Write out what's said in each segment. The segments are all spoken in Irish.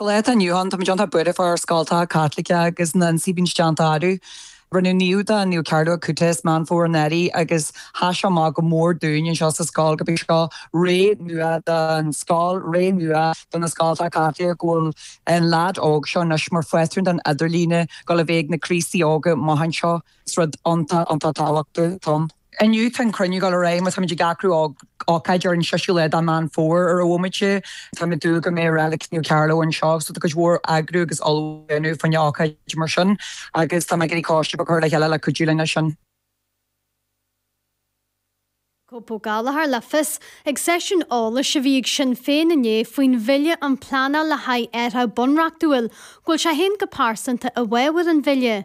Lá atá inniu ann, tá muid iontach buíoch fá ár scoltacha Caitliceacha agus na n-síbín déanta árú. Rinneadh naomh de Naomh Carlo Acutis i Meán Fómhair anuraidh agus sheas sé amach go mór dúinn anseo sa scoil go mbeidh seo ré nua don scoil, ré nua do na scoltacha Caitliceacha go bhfuil an leaid óg seo anois mar phátrún don idirlíon, go le bheith ag na Críostaí óga amuigh anseo. Is rud iontach, iontach tábhachtach dom. Inniu tá an cruinniú ag dul ar aghaidh, táimid ag eagrú ócáid ar an seisiú lá de Mheán Fómhair ar a bhfuilmid, táimid ag dúil go mbeidh relic Naomh Carlo anseo, so tá cuid mhór eagrú agus ullmhú a dhéanamh fá choinne ócáid mar sin agus tá mé ag iarraidh coiste a chur le chéile le cuidiú linn leis sin. Thug Pat Gallagher le fios ag seisiún eolais a bhí ag Sinn Féin inné faoin bhille um pleanáil le haghaidh athraithe bunreachtúil go bhfuil sé féin go pearsanta i bhfabhar an bhille,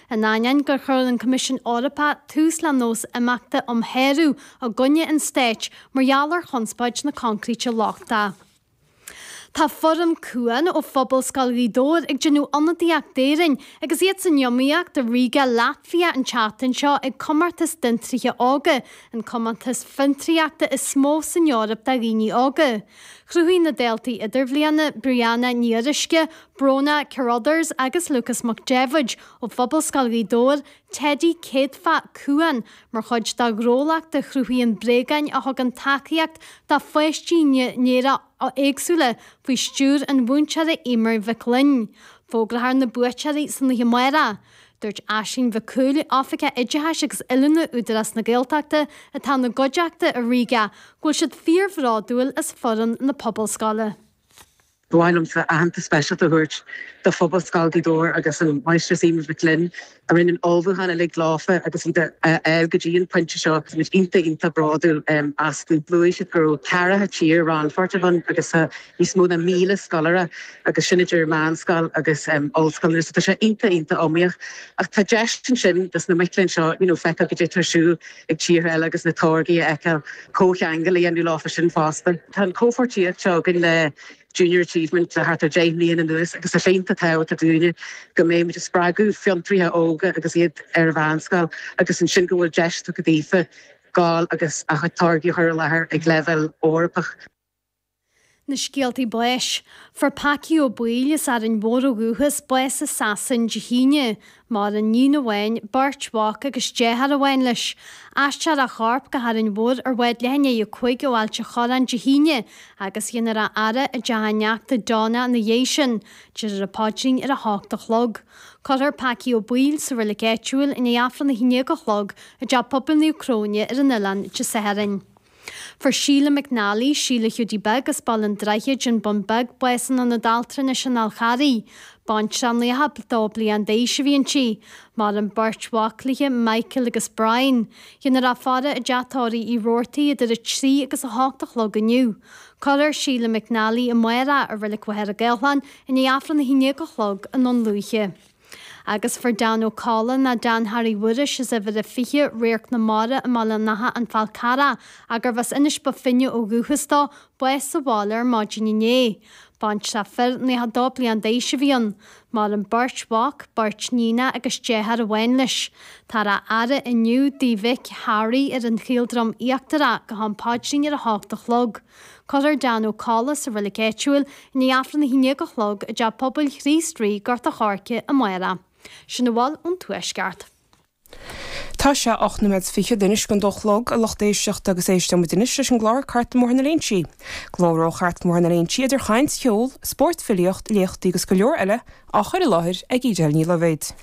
In ainneoin gur chuir an Coimisiún Eorpach tús le nós imeachta um shárú i gcoinne an stáit mar gheall ar chonspóid na coincréite lochtaí, tá foireann Cuan ó Phobalscoil Ghaoth Dobhair ag déanamh ionadaíocht d'Éirinn agus iad san iomaíocht i Riga, Laitvia an tseachtain seo ag comórtas d'fhiontraithe óga, an comórtas fiontraíochta is mó san Eoraip do dhaoine óga. Chruthaigh na daltaí idirbhliana, Brianna Ní Fhuaruisce, Bróna Carruthers agus Lucas Mac Daibhéid ó Phobalscoil Ghaoth Dobhair, teidí céadfach Cuan, mar chuid dá ngnólacht a chruthaíonn bréagáin a thugann tacaíocht do pháistí néara-éagsúla faoi stiúr an mhúinteora Emer Mhic Fhloinn. Fógrófar na buaiteoirí san oíche amárach. Dúirt Aisling Mhic Cumhaill, Oifigeach Oideachais agus Oiliúna Údarás na Gaeltachta atá ina gcuideachta i Riga, go bhfuil siad fíorbhródúil as foireann na Pobalscoile. Ba mhaith liomsa aitheantas speisialta a thabhairt do Phobalscoil Ghaoth Dobhair agus an Mháistreás Emer Mhic Fhloinn a rinne an ullmhúchán uilig leofa agus iad a fháil go dtí an pointe seo. Táimid iontach, iontach bródúil astu. Luaigh siad go raibh ceathracha tír rannpháirteach ann agus tá níos mó ná míle scoláire agus sin idir meánscoil agus ollscoileanna so tá sé iontach, iontach iomaíoch ach tá deis ansin dos na mic léinn seo you know feiceáil caidé atá ar siúl ag tíortha eile agus na táirgí a fheiceáil, comhcheangal a dhéanamh leofa sin fosta. Tá an chomhpháirtíocht seo againn le Junior Achievement le thart ar 10 mbliana anuas agus tá sé iontach tábhachtach dúinne go mbeidh muid ag spreagadh fiontraithe óga agus iad ar an mheánscoil agus ansin go bhfuil deis tugtha daofa gabháil agus a gcuid táirgí a chur i láthair ag leibhéal Eorpach. Na scéaltaí báis. Fuair Packy Ó Baoill as Árainn Mhór ó dhúchas, bás i Sasain Dé hAoine. Maireann iníon amháin, beirt mhac agus deartháir amháin leis. Aistreofar a chorp go hÁrainn Mhór ar bhád leath i ndiaidh a 5 ó Ailt a' Chorráin Dé hAoine agus déanfar a fhaire i dteach a neachta Donna ina dhiaidh sin. Déarfar an paidrín ar a hocht a chlog. Cuirfear Packy Ó Baoill sa roilig áitiúil i ndiaidh Aifreann a haon déag a chlog i dTeach Pobail Naomh Cróine ar an oileán Dé Sathairn. Fuair Síle McNally, Síle Hiúdaí Beag, as Baile an Droichid, An Bun Beag, bás in Ionad Altranais an Fháil Charraigh. Baintreach 92 bliain d'aois a bhí inti. Maireann beirt mhac léi, Michael agus Brian. Dhéanfar a faire i dTeach Tórraimh Uí Robhartaigh idir 3 agus 8 a chlog inniu. Cuirfear Síle McNally amárach i Reilig Mhachaire Gathlán i ndiaidh Aifreann a haon déag a chlog i nDún Lúiche. agus fuair Dan Ó Colla nó Dan Harry Mhuiris as uimhir a 20 Radharc na Mara i mBaile an Átha an Fál Carrach agus arbh as Inis Bó Finne ó dhúchas dó, bás sa bhaile ar maidin inné. Baintreach fir 92 bliain d'aois a bhí ann. Maireann beirt mhac, beirt níonach agus deartháir amháin leis. Táthar á fhaire inniu i dtigh a mhic Harry ar an Chaoldroim Íochtarach go ham paidrín ar a hocht a chlog. Cuirfear Dan Ó Colla sa reilig áitiúil i ndiaidh Aifreann a haon déag a chlog i dTeach Pobail Chríost Rí, Gort a' Choirce, amárach. Sin a bhfuil ón Tuaisceart. Tá sé ocht nóiméad fichead anois chun a dó a chlog a lucht éisteachta agus éisteoimid anois leis an gclár Cartlann Bhóthar na Léinsí. Glór ó Chartlann Bhóthar na Léinsí idir chaint, cheol, spórt, filíocht, léachtaí agus go leor eile á chur i láthair ag Edel Ní Loibhéad.